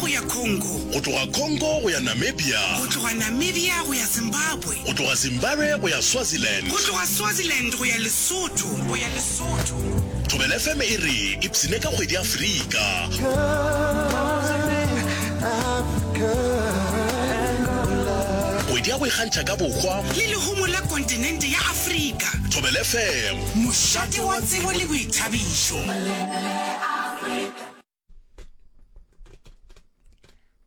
go ya Congo. Go tloga Congo go ya Namibia. Go tloga Namibia go ya Zimbabwe. Go tloga Zimbabwe go ya Swaziland. Go tloga Swaziland go ya Lesotho, go ya Lesotho. Thobela FM e re ipsine ka kgwedi Afrika. Kgwedi ya go ikgantšha ka bohwa. Le lehumo la kontinente ya Afrika. Thobela FM. Mošate wa tsebo le boithabišo.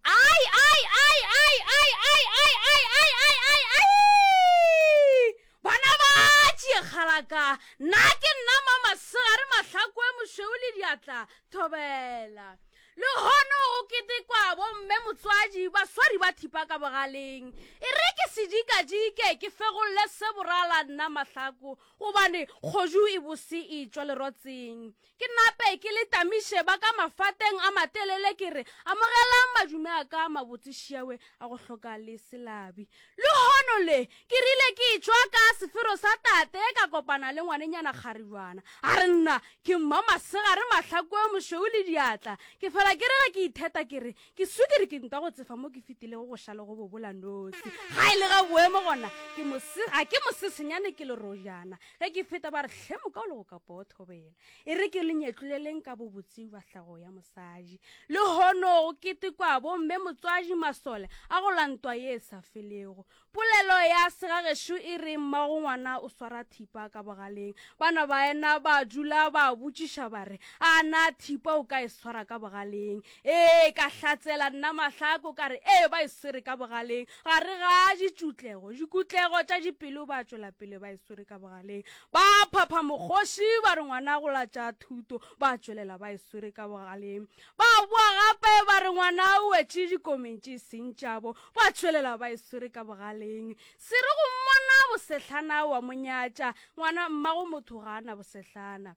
Ai, ai, ai, ai, ai, ai, ai, ai, ai, ai, ai, ai! Bana ba tšekgalaka, nna ke nna ma masegare mahlakwe mošweu le diatla, thobela. Le gono go ketekwa bomme motswadi baswari ba thipa ka bogaleng. E re ke sedikadike ke fegolole se borala nna mahlako, gobane kgoju e bose e tšwa lerotseng. Ke nape ke le tamiše ba ka mafateng a matelele ke re, Amogelang madume a ka a mabotse šiawe a go hloka le se labi. Lehono le, ke rile ke tšwa ka sefero sa tate ka kopana le ngwanenyana Kgaribjwana. A re nna, ke mma Masegare Mahlakwe mošweu le diatla. Ke fela ke re ge ke itheta ke re, ke swikiri ke ntwa go tsefa mo ke fitilego go ša le go bobola nosi. Ga e le ga boemo gona, ke mo se, ga ke mo sesenyane ke lerojana. ge ke feta ba re hle moka o le go ka pothobela e re ke le nyetloleleng ka bobotse ba hlago ya mosadi le hono go ketekwa bomme motswadi masole a go lantwa ye e sa felego polelo ya segagešo e re mmago ngwana o swara thipa ka bogaleng bana ba ena ba dula ba botšiša ba re a na thipa o ka e swara ka bogaleng Ee, ka hlatsela nna mahlako ka re, Ee, ba e swere ka bogaleng, gare ga ditšutlego, dikutlego tša dipelo ba tšwela pele ba e swere ka bogaleng. Ba phapha mokgoši ba re ngwana go latša thuto, ba tšwelela ba e swere ka bogaleng. Ba boa gape ba re ngwana o wetše dikomeng tše e seng tšabo, ba tšwelela ba e swere ka bogaleng. Se re go mmona bosehlana wa mo nyatša, ngwana mmago motho ga a na bosehlana.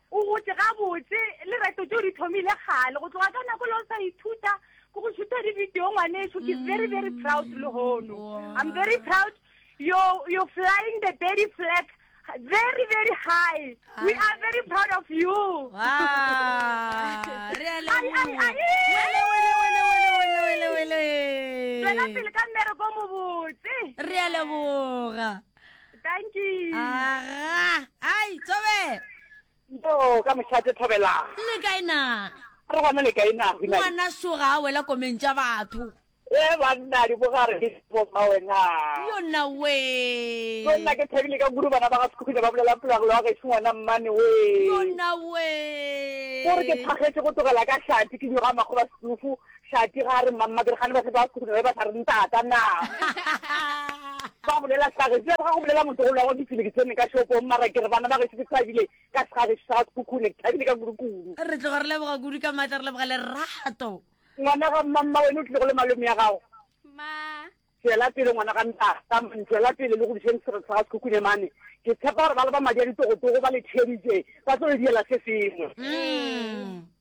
O gotše gabotse. Lerato tšeo di thomile kgale. Go tloga ka nako le o sa ithuta ke go šutha di-video ngwaneso. Ke very very proud mm, lehono. I'm very proud. You're, you're flying the daddy flag very very high. We are very proud of you. Ah, re a le. Ai ai ai. Wele wele wele wele wele wele. Tswela pele ka mmereko mobotse. Re a leboga. Thank you. Aga, ai, Tobela. Yo, ka mošate Tobela. Le kae na? Re gona le kae na? Ngwana soga a wela komeng tša batho. E banna di bogare di bo ba wena. Yo na we. Yo na ke thabile ka guru bana ba ga sekhukhile ba bolela pula go lwa ga se ngwana mmane we. Yo na we. Gore ke thagetse go togela ka shati ke nyoga makgoba sedufu Tlati ga a re mmammake re gane ba ba khuduno ba ba sa re ntata na ba bolela sage se ga go bolela motho go lwago ditsele ke tsene ka shopong mara ke re bana ba ge se thabile ka sage se sa khukhune ke thabile ka kurukuru re tloga re leboga kudu ka maatla re leboga lerato ngwana ga mmamma wena o tlile go le malome ya gago ma Tšwela pele ngwana ga ntata. Tšwela pele le go dišeng sereto sa ga Sekhukhune mane. Ke tshepa gore ba le ba madi a ditogotogo ba le theeditše ba tlo le diela se sengwe.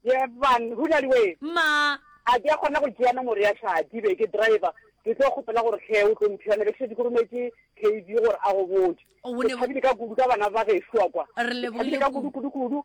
Ye ban, go na le we. Mma. A ke a kgona go tšea nomoro ya Shadi be ke driver? Ke tlo kgopela gore tlhe o tlo mphiwane be ke šetše ke rometše KB gore a go botše. Ke thabile ka kudu ka bana ba gešo kwa. Re lebohile kudu. Ke thabile ka kudu kudu kudu.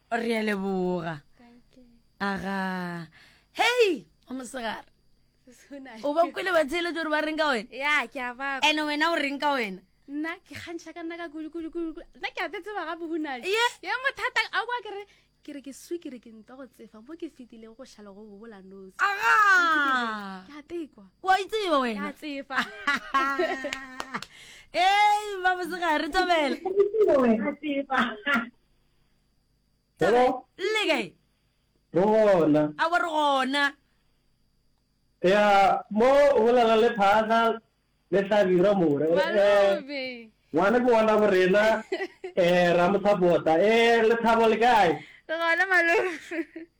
re a leboga aga hei o mosegare o ba kwele ba tsheletso gore ba reng ka wena ya ke a ba ene wena o reng ka wena nna ke kgantšha ka nna ka kudukudukudu nna ke a tsetseba gape hunale ye ye mothata a kwa kere ke re ke swi ke re ke nta go tsefa mo ke fetilego go šhala go bobola nosi aga ke a tekwa wa itseba wena ka tsefa ee ba bosegare tobela Taba Go- le kae? go gona A bo re gona. ya mo o bolela le phaga le hlabira more Eh, Malobe. ngwana ke ngwana bo rena um ra mo support-a um lethabo le kae Re gona malobe.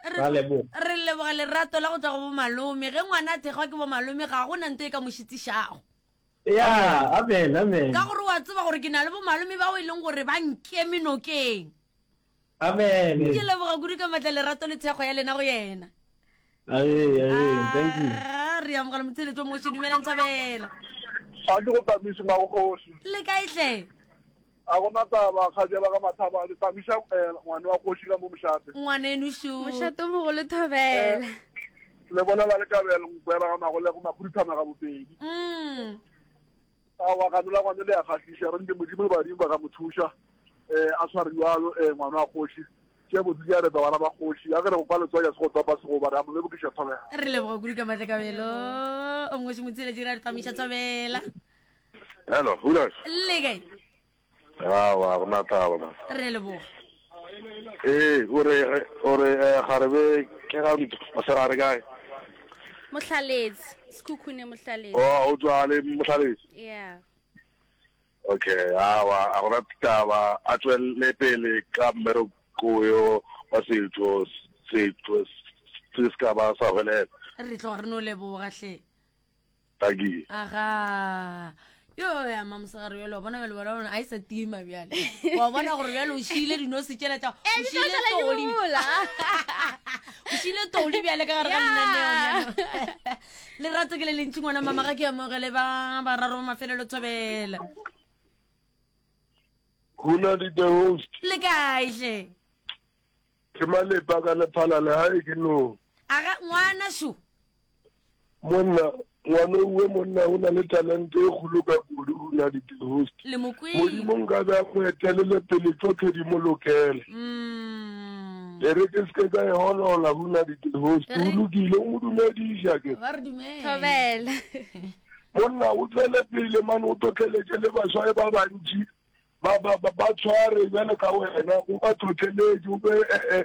Ra leboga. Re leboga lerato la go tšwa go bomalome. Ge ngwana a thekgwa ke bomalome, ga go na nto e ka mo šitišago. Ya, amen, amen. Ka gore o a tseba gore ke na le bomalome bao e leng gore ba nkeme nokeng. Amen. Ke leboga kudu ka matla lerato le thekgwa ya lena go yena. Amen, amen. Thank you. Ah, re amogela motheletso o moši. Dumelang Thabela. Ga ke go tamise magogosi. Le kae hle? A go na taba, kgajela ga mathaba, le tamiša ngwane wa kgoši ka mo mošate. Ngwaneno šo. Mošate o mogolo thobela. Le bolela le kabelo mokwela ga magolego makhuduthamaga bobedi. Aowa ganola ngwane le ya kgahliša re nke modimo le badimo ba ka mo thuša um a tshware jalo um ngwana wa kgoši tše botse tša reta bana ba kgoši ya ke re go kwa letswaya se go topa segoba re a mo lebokiša thobela. Re leboga kudu ka matlakabelo o ngoši motsheletši re a re tamiša thobela. Hello, Hulas. Le kae? Ah, wa rona taba na. Re leboga. Eh, o re o re eh, ga re be ke ga ntho. O se ga re kae? Mohlaleetsi, Sekhukhune Mohlaleetsi. Oh, o tswa le motlhaletse. Yeah. Okay, ah, wa a gona taba a tswelle pele ka mmereko yo wa setho setho se se ka ba sa hwelela. Re tloga re no leboga hle. Paki. Aga. Yo ya mama sagare yo lo bona bjalo bona bona a isa tima bjalo. Wa bona gore bjalo o shile dino se tšela tša. O shile toli. O shile toli bjalo ka gare ga lena neo. Le ratso ke le lentsi ngwana mama ga ke ya mogele ba ba raro mafelelo tsobela. Hula di the host. Le kae hle? Ke malepa ka lephala le hae ke no. Aga ngwana šo. Monna, ngwano uwe monna o na le talente e kgolo ka kudu o na di host. Le mokwele. Modimo nka be a go etelele pele tsotlhe di mo lokele. Mm. Le re ke ske ka e holola ho na di host. O lokile o mo dumedisha ke. Ba re dumela. Thobela. Monna o tswele pele mane o totleletše le baswa e ba bantši. Ba, ba, ba, ba tshware bjalo ka wena, o ba tlhotlheletše, o be, e, e,